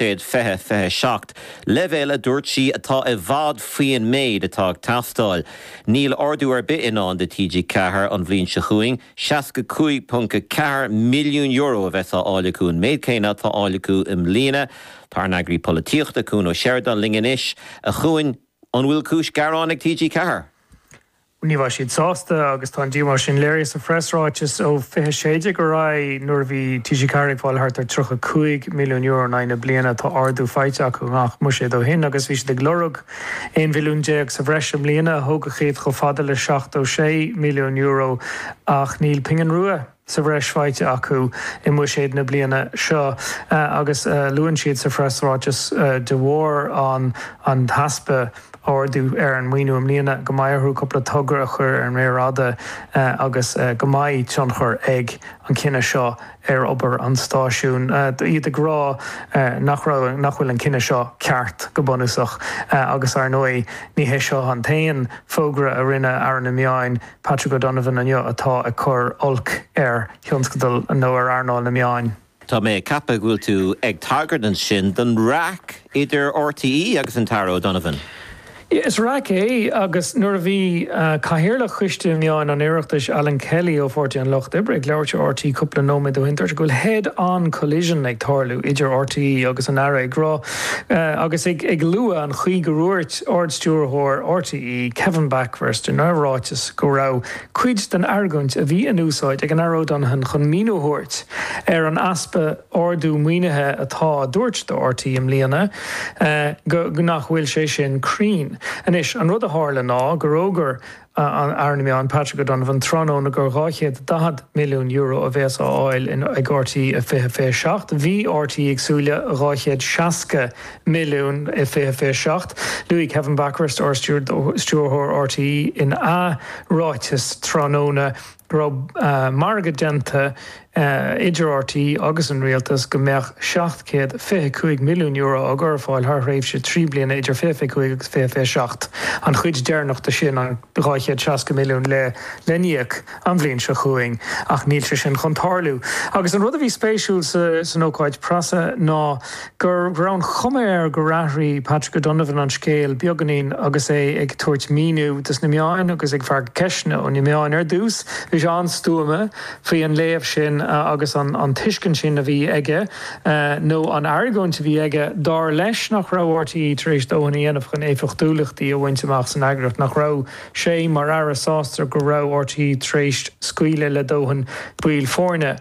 i 2027, leibhéal, a dúirt sí, atá i bhfad faoin méid atá ag teastáil. Níl ardú ar bith i ndán do TG4 an bhliain seo chugainn, €65.4 milliún a bheas á fháil acu, an méid céanna atá á fháil acu i mbliana. Tá ár n-eagraí polaitíochta, Cuan Ó Seireadáin, linn anois. A Chuain, an bhfuil cúis gearáin ag TG4? Ní raibh siad sásta agus tá an díomá sin léirithe sa phreasráiteas ó 2016 ar aghaidh nuair a bhí TG4 ag fáil thart ar €35 milliún in aghaidh na bliana. Tá ardú faighte acu i ngach mbuiséad ó shin agus bhí siad ag lorg €11 mhilliún sa bhreis i mbliana a thógfadh iad chomh fada le €76 milliún ach níl pingin rua sa bhreis faighte acu i mbuiséad na bliana seo agus luann siad sa phreasráiteas de bharr an t-easpa ardú ar an maoiniú i mbliana go mbeidh orthu cúpla togra a chur ar an méar fhada agus go mbeidh tionchar ag an gcinneadh seo ar obair an stáisiúin. Iad ag rá nach raibh, nach bhfuil an cinneadh seo ceart go bunúsach agus, ar ndóigh, ní hé seo an t-aon fógra a rinne Aire na Meán Patrick O'Donovan inniu atá ag cur olc ar thionscadal nó ar earnáil na meán. Tá mé ag ceapadh go bhfuil tú ag tagairt ansin don raic idir RTÉ agus an tAire O'Donovan? Is raic é agus nuair a bhí Cathaoirleach Choiste Meáin an Oireachtais, Alan Kelly ó Pháirtí an Lucht Oibre, ag labhairt ar RTÉ cúpla nóiméad ó shin, dúirt sé go bhfuil head-on collision ag tarlú idir RTÉ agus an Aire, ag rá. Agus ag lua an chaoi gur dhúirt Ard-Stiúrthóir RTÉ Kevin Bakhurst ina ráiteas go raibh cuid den argóint a bhí in úsáid ag an Aire O'Donovan chun míniú a thabhairt ar an easpa ardú maoinithe atá á dtabhairt do RTÉ i mbliana go nach bhfuil sé sin cruinn anois. An rud a tharla ná gur fhógair Aire na Meán, Patrick O'Donovan, tráthnóna gur €240 milliún a bhéas á fháil ag RTÉ i 2027. Bhí RTÉ ag súil le €260 milliún i 2027. Luaigh Kevin Bakhurst, Ard-Stiúrthóir RTÉ, ina ráiteas tráthnóna, go raibh margadh déanta idir RTÉ agus an Rialtas go mbeadh €725 milliún á gcur ar fáil thar thréimhse trí bliana idir 2025 agus 2027, an chuid deireanach de sin, an €260 milliún, le n-íoc an bhliain seo chugainn, ach níl sé sin chun tarlú. Agus an rud a bhí spéisiúil san ócáid preasa ná. go raibh an chuma air gur athraigh Patrick O'Donovan an scéal beagáinín agus é ag tabhairt míniú dos na meáin agus ag freagairt ceisteanna ó na meáin. Ar dtús, bhí sé an-stuama faoi an léamh sin agus an tuiscint sin a bhí aige, nó an argóint a bhí aige, dar leis, nach raibh RTÉ tar éis dóthain a dhéanamh chun éifeachtúlachtaí a bhaint amach san eagraíocht, nach raibh sé, mar Aire, sásta go raibh RTÉ tar éis scaoileadh le dóthain baill foirne.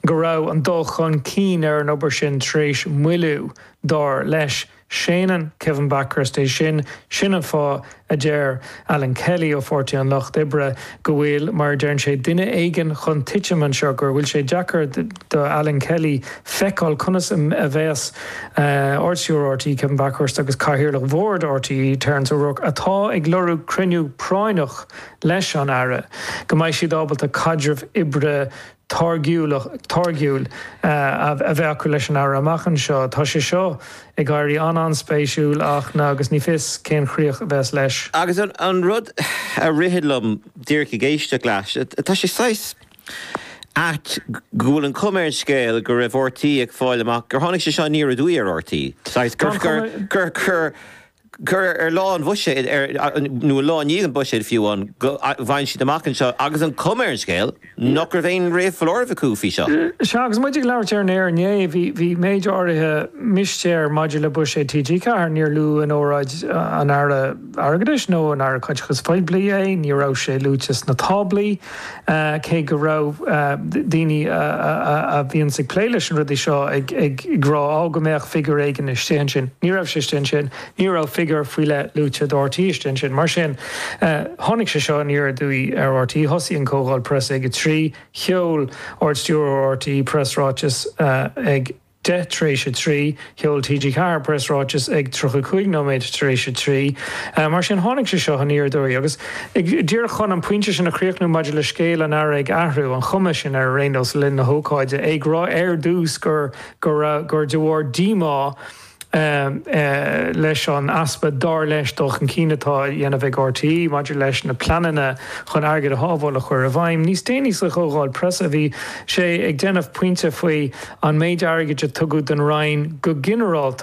go raibh an dul chun cinn ar an obair sin tar éis moilliú, dar leis. Séanann Kevin Bakhurst é sin, sin an fáth, a deir Alan Kelly ó Pháirtí an Lucht Oibre, go bhfuil, mar a deireann sé, duine éigin chun titim anseo, go bhfuil sé deacair do Alan Kelly feiceáil conas a bheas Ardstiúrthóir rte, Kevin Bakhurst, agus Cathaoirleach Bhord rte, Terence O'Rourke, atá ag lorg cruinniú práinneach leis an Aire, go mbeidh siad ábalta caidreamh oibre táirgiúil a bheith acu leis an Aire amach anseo. Tá sé seo ag éirí an-an-spéisiúil ach agus ní fios cén críoch a bheas leis. Agus an rud a ritheann liom díreach ag éisteacht leat, tá sé saghas ait go bhfuil an chuma ar an scéal go raibh RTÉ ag fáil amach gur tháinig sé seo aniar aduaidh ar RTÉ, saghas gur gur ar lá an bhuiséid, nó an lá i ndiaidh an bhuiséid fiú, go bhfaigheann siad amach anseo, agus an chuma ar an scéal nach raibh aon réamhfholáireamh acu faoi seo. Sea, agus muid ag labhairt ar an aer inné, bhí méid áirithe mistéir maidir le buiséad TG4. Níor luadh in óráid an Aire Airgeadais nó an Aire Caiteachais Phoiblí é, ní raibh sé luaite sna táblaí, cé go raibh daoine a bhíonns ag plé leis na rudaí seo ag rá á go mbeadh figiúr éigin istigh ansin. Ní raibh sé istigh ansin, ní raibh figiúr faoi leith luaite do RTÉ istigh ansin. Mar sin, tháinig sé seo aniar aduaidh ar RTÉ. Thosaigh an Chomhdháil Preasa ag a trí, sheol Ard-Stiúrthóir RTÉ preasráiteas ag. 10 tar éis a trí, Sheol TG4 preasráiteas ag 35 nóiméad tar éis a trí. Mar sin tháinig sé seo aniar aduaidh agus díreach chun an pointe sin a chríochnú maidir le scéal an Aire ag athrú an chuma sin ar aon nós le linn na hócáide, é ag rá ar dtús gur de bharr díomá leis an easpa, dar leis, dul chun cinn atá á dhéanamh ag RTÉ maidir leis na pleananna chun airgead a shábháil a chur i bhfeidhm. Níos déanaí sa chomhdháil preasa bhí sé ag déanamh pointe faoi an méid airgid a tugadh don Roinn go ginearálta,